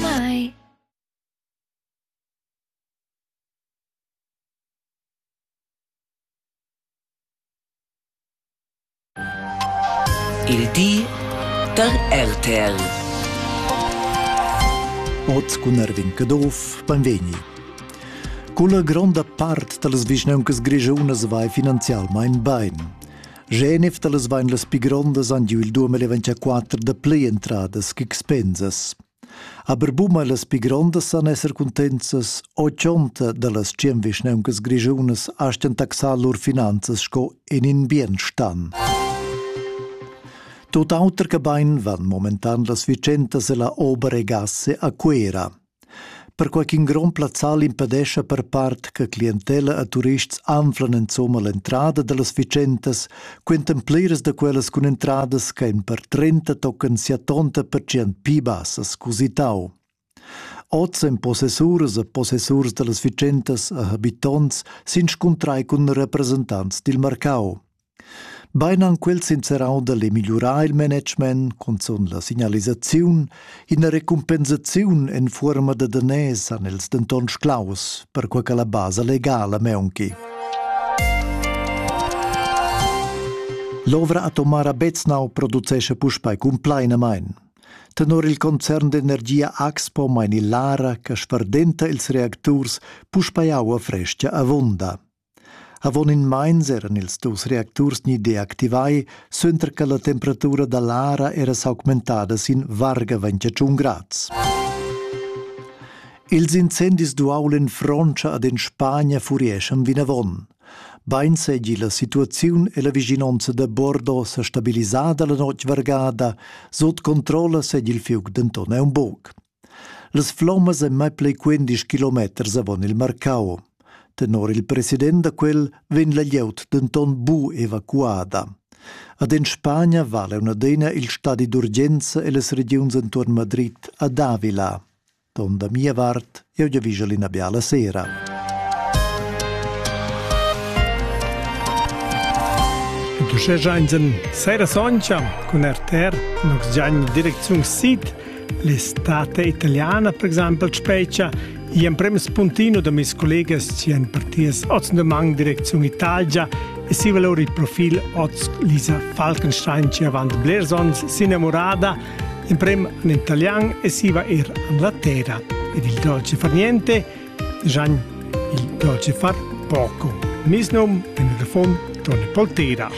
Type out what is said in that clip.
mai Il di da RTL. Oz cun Erwin Caduff, benvegni. Culla gronda part da las vischnauncas grischunas vai finanzialmain bain. Genef da las vain las pi grondas han giu il 2024 da plei entradas ch'expensas. Aber buma las pi grondas san esser cuntenzas o chonta da las tschien vischneuncas grischunas astgan taxar lur finanzas sco in in bienstan. Tot auter che bain van momentan las vicentas e la ober e gasse a Cuera. perquai ch'in grond plazzal impedescha per part che clientella e turists anflan insomma l'entrada da las fitschentas, quentan pliras da quellas cun entradas che en per 30 tocan sia tonta pertgient pi bassas cusitau. Oz en possessuras e possessurs da las fitschentas e habitonts s'inscuntrai cun representants dil marcau. Bein han quels inserau dall e migliurar il management, cunzun la signalisaziun, ina recumpensaziun en fuorma da daners han els denton sclaus, perquei che la basa legala meunchi. L'ovra atomara Beznau producesce puspei cumplainamein. Tenor il concern d'energia Axpo meini l'ara che sferdenta ils reacturs puspei aua fresca avunda. Avon in meins eran ils dus reacturs ni deactivai suenter che la temperatura da l'ara era s'augmentada sin varga 21 grads. Ils incendis d'uaul en Frontscha ed en Spagna furieschan vinavon. Bein seigi la situaziun e la vischinonza da Bordeaux sa stabilisada la notg vargada, sut controlla segi il fiug denton aunc buc. Las flommas ein mai pli quindisch kilometers avon il marcau. Tenor il president da quel vegn la glieud denton bu evacuada. Ad en Spagna vala una adina il stadi d'urgenza e las regiuns entuorn Madrid ad Avila. Don da mia vart, eu giavischel ina biala sera. Du schegiainsen, seira soncha cun RTR, nux giagni direcziun sid L'estate italiana, per exempel, sprecha i emprem spuntino da mes collegas ci han partias oz de mang direcziun Italia e si vala il profil oz Lisa Falkenstein ci avant blers ons sinamorada emprem in italian e si va ir Anglaterra ed il dolce far niente Gian il dolce far poco. Mis num in refon Tony Poltera.